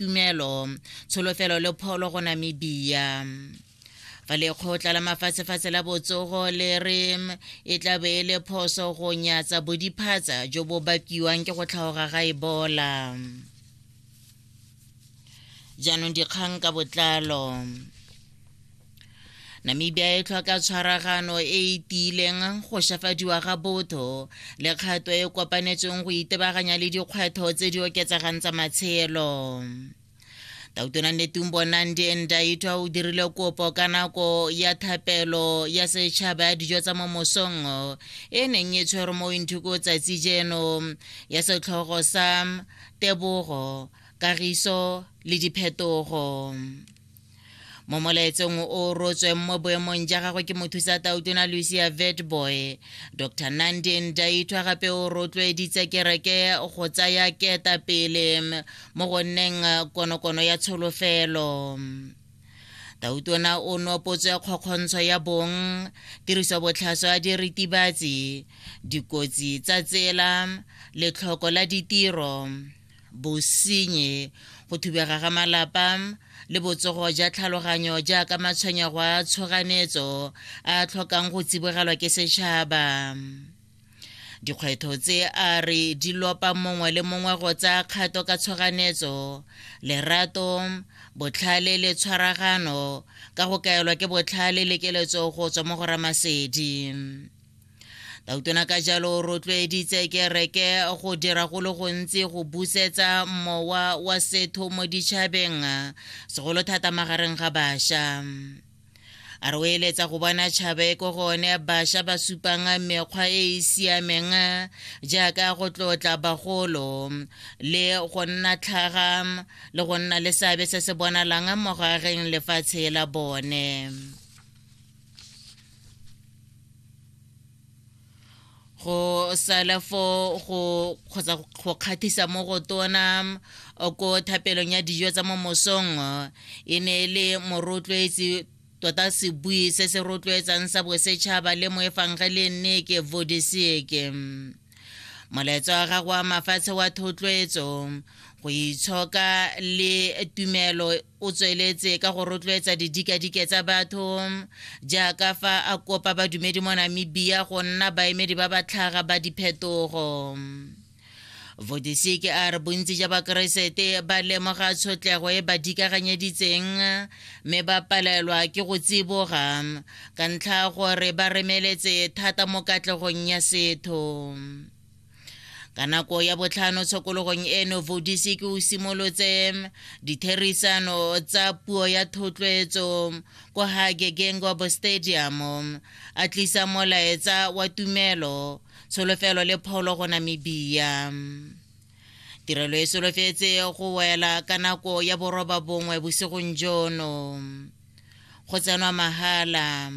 tumelo tsholofelo le pholo go namibia fa lekgotla la mafatshefatshe la botsogo le re e tla be e le phoso go nyatsa bodiphatsa jo bo bakiwang ke go tlhaoga ga ebola jaanong dikgang ka botlalo namibia e tlhoka tshwaragano e e tiileng go shafadiwa ga botho le kgato e kopanetsweng go itebaganya le dikgwetlho tse di oketsegang tsa matshelo tautona netumbo nandi endaitwa o dirile kopo ka nako ya thapelo ya setšhaba ya dijo tsa mo mosong e neng e tshwerwe mo inthuko tsatsi jeno ya setlhogo sa tebogo kagiso le diphetogo mo molaetsong o rotsweng mo boemong ja gagwe ke mothusa tautona lucia vetboy dr nandi ndaithwa gape o rotloeditse kereke go tsaya keta pele mo go nneng konokono ya tsholofelo tautona o nopotswe kgokgontsho ya bong tiriso botlhaswa ya diritibatsi dikotsi tsa tsela letlhoko la ditiro bosenye go thubega ga malapa le botsogo ja tlhaloganyo jaaka matshwenyego a tshoganetso a tlhokang go tsibogelwa ke setšhaba dikgwetho tse a re di lopa mongwe le mongwe go tsaya kgato ka tshoganetso lerato botlhale le tshwaragano ka go kaelwa ke botlhale le keletso go tswa mo go ramasedi tautona ka jalo o rotloeditse kereke go dira go le gontsi go busetsa mowa wa setho mo ditšhabeng segolo thata magareng ga bašwa a re o eletsa go bona tšhaba e ko gone bašwa ba supang mekgwa e e siameng jaaka go tlotla bagolo le go nna tlhaga le go nna le seabe se se bonalang mogareng lefatshe la bone go sala fo go kgotsa go kgathisa mo go tona ko thapelong ya dijo tsa mo mosong e ne e le morotloetsi tota sebui se se rotloetsang sa bosetšhaba le moefangge le nneke vodiseke molaetso wa gago wa mafatshe wa thotloetso go itshoka le tumelo O tsweletse ka go rotloetsa didikadike tsa batho jaaka fa a kopa badumedi mo Namibia go nna baemedi ba batlhaga ba diphetogo. Vodisiki a re bontsi ja bakeresete ba lemoga tshotlego e ba dikaganyeditseng mme ba palelwa ke go tsiboga ka ntlha gore ba remeletse thata mo katlegong ya setho. ka nako ya botlhano tshokologong eno vodisi ke o simolotse ditherisano tsa puo ya thotloetso kwa hage gengobo stadium a tlisa molaetsa wa tumelo tsholofelo le pholo go namibia tirelo e solofetse go wela ka nako ya boroba bongwe bosigong jono go tsenwa mahala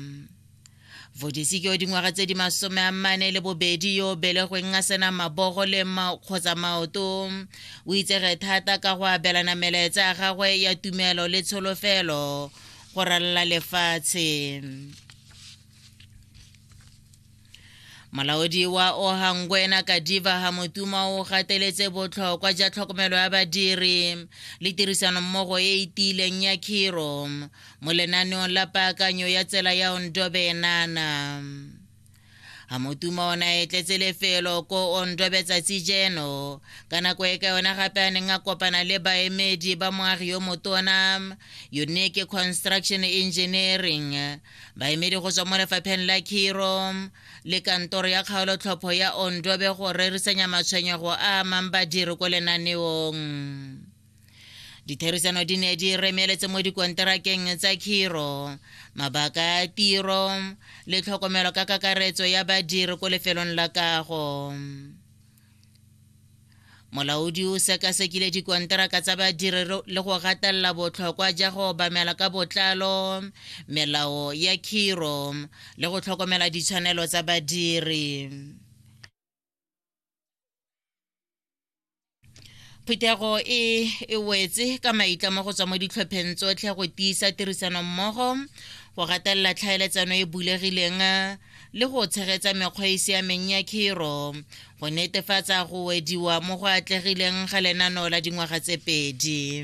Vodisi ke o dingwaga tse di masome a mmane le bobedi yo o belegweng a sena mabogo le kgotsa maoto. O itsege thata ka go abelana melaetsa ya gagwe ya tumelo le tsholofelo go ralala lefatshe. molaodi wa ohangwena kadiva hamotuma o gateletse botlhokwa ja tlhokomelo ya badiri le tirisanommogo e e tiileng ya khiro mo lenaneong la paakanyo ya tsela ya ondobe enana a motuma ona e tletse lefelo ko ondobe tsatsi jeno ka nako e ka yona gape a neng a kopana le baemedi ba moagi yo motona unique construction engineering baemedi go tswa mo lefapheng la khiro le kantoro ya kgaolotlhopho ya ondobe go rerisanya matshwenyego a amang badiri ko lenaneong ditherisano di ne di remeletse mo dikonterakeng tsa khiro mabaka a tiro le tlhokomelo ka kakaretso ya badiri ko lefelong la kago molaodi o sekasekile dikonteraka tsa badiri le go gatelela botlhokwa ja go obamela ka botlalo melao ya khiro le go tlhokomela ditshwanelo tsa badiri phuthego e e wetse ka maitlamo go tswa mo ditlhopheng tsotlhe go tiisa tirisanommogo go gatelela tlhaeletsano e bulegileng le go tshegetsa mekgwa e siameng ya khiro go netefatsa go wediwa mo go atlegileng ga lenaneo la dingwaga tse pedi